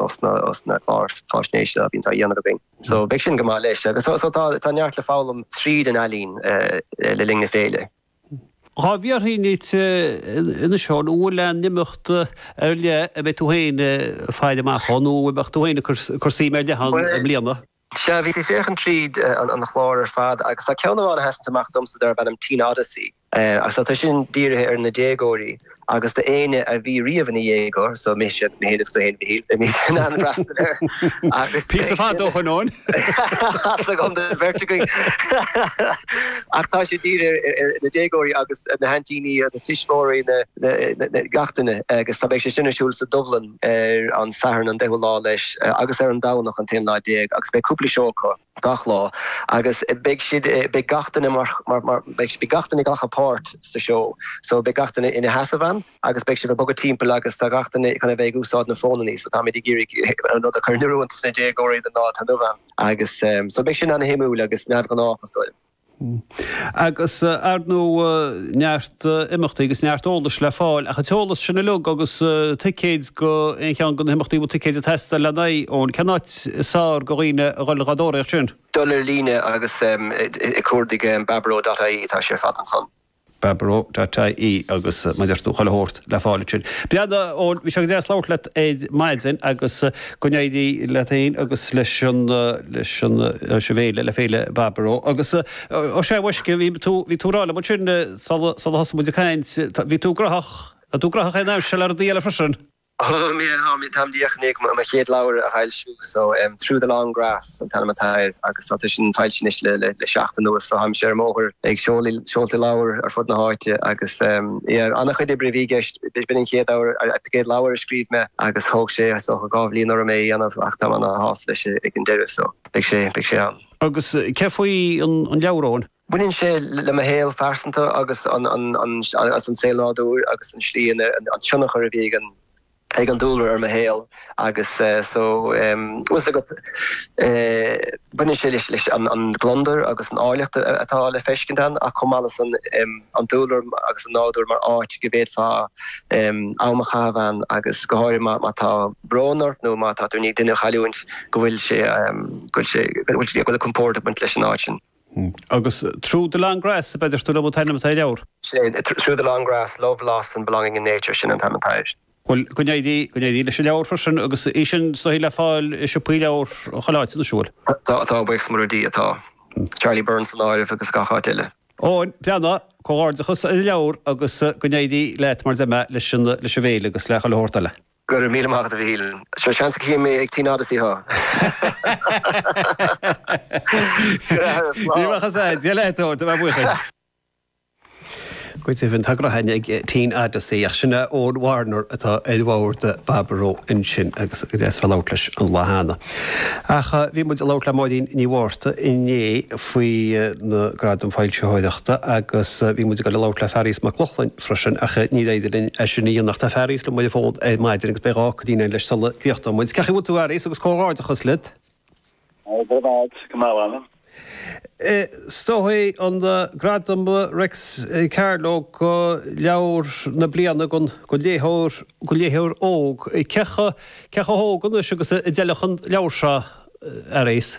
os na cláir faisnéise a bhíonns á dhéanamh againn. So beidh sin go maith leis. Agus so tá tá neart le foghlaim tríd an ealaín le linn na féile. Dhá bhfiafróinn díot anois Eoin, an bhfuil aon imeacht ar leith a mbeidh tú féin ag faire amach dhó nó a mbeadh tú féin ag cur suim ar leith ann i mbliana? Sea, bhíos ag féachaint tríd an chlár ar fad agus tá ceann amháin a sheasanns amach domsa darb ainm Teen Odyssey. Agus tá sin dírithe ar na déagóirí agus do éinne a bhí riamh ina dhéagóir, so mise, mé féin agus tú fhéin a Mhichíl, beimid in ann freastal air agus Píosa beag fada ó shoin ann! Áthas agam don bheirt againn! Ach tá sé dírithe ar na déagóirí agus na haintíní, tuismeoirí, na, na, na, gach duine agus tá, beidh sé sin ar siúl sa Dubhlann. ar an Satharn an deichiú lá leis agus ar an Domhnach an t-aon lá déag agus beidh cúpla seó acu. gach lá agus beidh siad, beidh gach duine mar, mar, mar, beidh gach duine ag glacadh páirt sa seó so beidh gach duine ina sheasamh ann agus beidh siad ag bogadh timpeall agus tá gach duine chun a bheith ag úsáid na fónannaí so táimid ag iarraidh an rud a chur in oiriúint dos na déagóirí don lá atá inniu ann agus so beidh sin an-shuimiúil agus neamhghnách is dóigh liom. Agus, ar ndóigh, neart imeachtaí agus neart eolais le fáil ach an t-eolas sin uilig agus ticéid do aon cheann de na himeachtaí a bhfuil ticéid ag teastáil lena n-aghaidh, Eoin, cén áit is fearr do dhaoine a dhul dá dtóraíocht sin? Dul ar líne agus ag cuardach baboró dot ie, tá sé ar fad ansan. Baboró dot ie agus mar a deir tú chuile shórt le fáil ansin. Breathnaigh Eoin, bhí sé go deas labhairt leat ar maidin agus go n-éirí leat féin agus leis an, leis an, leis an bhféile, le Féile Baboró. Agus ó sea maisce, bhí tú, bhí tú ag rá liom ansin sula, sula thosaigh muid ag caint, bhí tú graitheach, tá tú graitheach an aimsir le rudaí eile freisin. Táim díreach i ndiaidh mo chéad leabhar a fhoilsiú so em Through the Long Grass an t-ainm atá air agus tá sé sin foilsithe anois le le le seachtain anuas so táimse ar an mbóthar ag seoladh seoltaí leabhar ar fud na háite agus em yeah an-chuid oibre a bhí i gceist b'in an chéad leabhar an chéad leabhar a scríobh mé agus thóg sé is dócha dhá bhliain orm é a dhéanamh ach táim ana shásta leis ag an deireadh so beidh sé beidh sé ann. Agus cé faoi an an leabhar Eoin? Baineann sé le mo shaol phearsanta agus an saol nádúir agus an tslí ina, an tionchar a bhí ag an dúlra ar mo shaol agus so bhfuil 's agat baineann sé leis an gliondar agus an áilleacht atá le feiscint ann ach chomh maith leis san an dúlra agus an nádúr mar áit go bhféadfá am a chaitheamh ann agus go háirithe má tá brón ort nó má tá tú i ndiaidh duine a chailliúint go bhfuil sé go bhfuil compord ag baint leis an áit sin. Agus Through the Long Grass, ab ea a deir tú liom an t-ainm atá ar an leabhar. Sin, Through the Long Grass, Love, Loss and Belonging in Nature, sin an t-ainm atá air. Bhuel, go n-éirí, go n-éirí leis an leabhar freisin agus é sin is dóichí le fáil i siopaí leabhar chuile áit, anois, an bhfuil? Tá, atá, buíochas mór le Dia, atá. Charlie Byrne san áireamh agus gach áit eile. Eoin, breathnaigh, comhghairdeachas ar an leabhar agus go n-éirí leat maidir leis an, leis an bhféile agus le chuile shórt eile. Go raibh míle maith agat, a Mhichíl. Seo seans a chífidh mé ag Teen Odyssey thú! Go raibh maith agat, slán! Buíochas a Dhia leat, Tor, do bharr buíochas. Go deimhin, tá grá againn ag Teen Odyssey, ach sin é Eoin Warner atá ar bhord Bhaboró ansin agus is deas bheith ag labhairt leis an lá cheana. Ach bhí muid ag labhairt le Máirín Ní Mhárta inné faoi na Gradaim Foilsitheoireachta agus bhí muid ag dul ag labhairt le Fearghas Mac Lochlainn, freisin ach níorbh fhéidir linn é sin a dhéanamh ach tá Fearghas liom ar an bhfón ar maidin agus beidh dhá nóiméidín againn leis sula gcríochnóidh muid. Cén chaoi a bhfuil tú a Fhearghais agus comhghairdeachas leat. Go raibh maith agat, go maith anam. Is dóigh é an Gradam Réics Carló do leabhar na bliana don léitheoir óg. Cé chomh hóg anois agus a d'fheilfeadh an leabhar seo, a Fhearghais?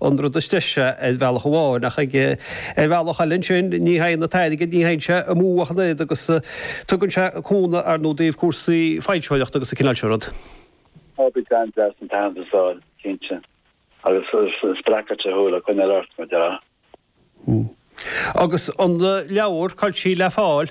an rud is deise ar bhealach amháin ach ag ar bhealach eile ansin ní théann an t-airgead, ní théann sé amú ach an oiread agus tugann sé cúnamh ar ndóigh i dtaobh cúrsaí foilsitheoireachta agus an cineál sin rud. Á tugann, deas an t-aitheantas a fháil, cinnte, agus spreagfadh sé thú le coinneáil ort, mar a déarfá. Agus an leabhar, cá bhfuil sí le fáil?